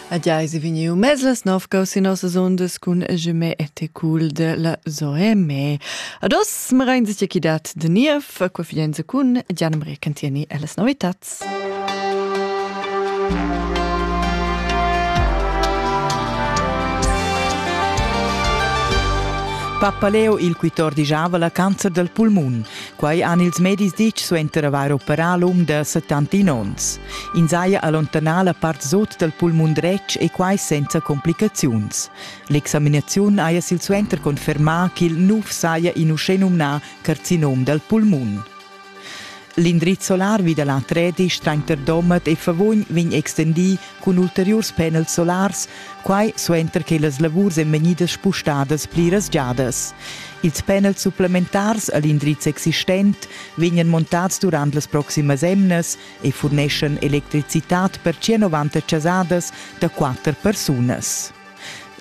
Adiai se vegniu mez las nov gau sin nossas ondas cun Jemé e te cool de la Zoe May. Ados marein sich chi dat de niev qua fienza cun Gianna Maria Cantieni e las novitats. Pappa Leo il 14 la cancer del pulmun. Quai han ils medis ditg suenter avair operà lung da 71 onns. Ins haja allontanà la part sut dal pulmun dretg e quai senza complicaziuns. L'examinaziun haja silsuenter confermà ch'il nuv saja in uschè numnà carcinom dal pulmun. L'indriz solar vi da l'Atredi Streinter Domat e Favugn vegn extendì cun ulteriurs panels solars Quai suenter che las lavurs èn vegnidas spustadas pliras giadas. Ils panels supplementars a l'indriz existent vegnan montads durant las proximas emnas e furneschan electricitad per 190 chasadas da quatter persunas.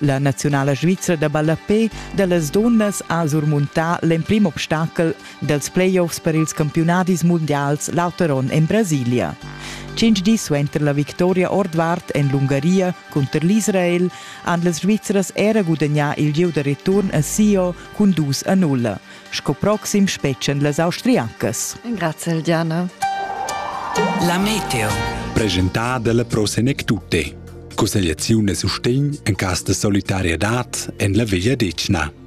La naziunala svizra da ballapé da las dunnas ha surmuntà l'emprim obstacel dals playoffs per ils campiunadis mundials l'auter onn en Brasilia. Tschintg dis suenter la victoria ordvart en l'Ungaria cunter l'Israel han las Svizras era gudagnà il gieu da return a Sio cun dus a nulla. Sco proxim spetgan las Austriacas. Grazie Diana. La Meteo. Presentada dalla Pro Senec Tutte. Consigliazione sustegn en cas de solidarietà en la Via Decna.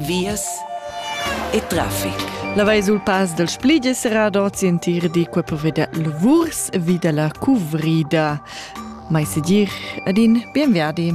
vias e traffic. La vai sul pass dal Split è serrada oz entir di qua per veder lavurs e vida la cuvrida. Mai se dir, ad in bienverdi.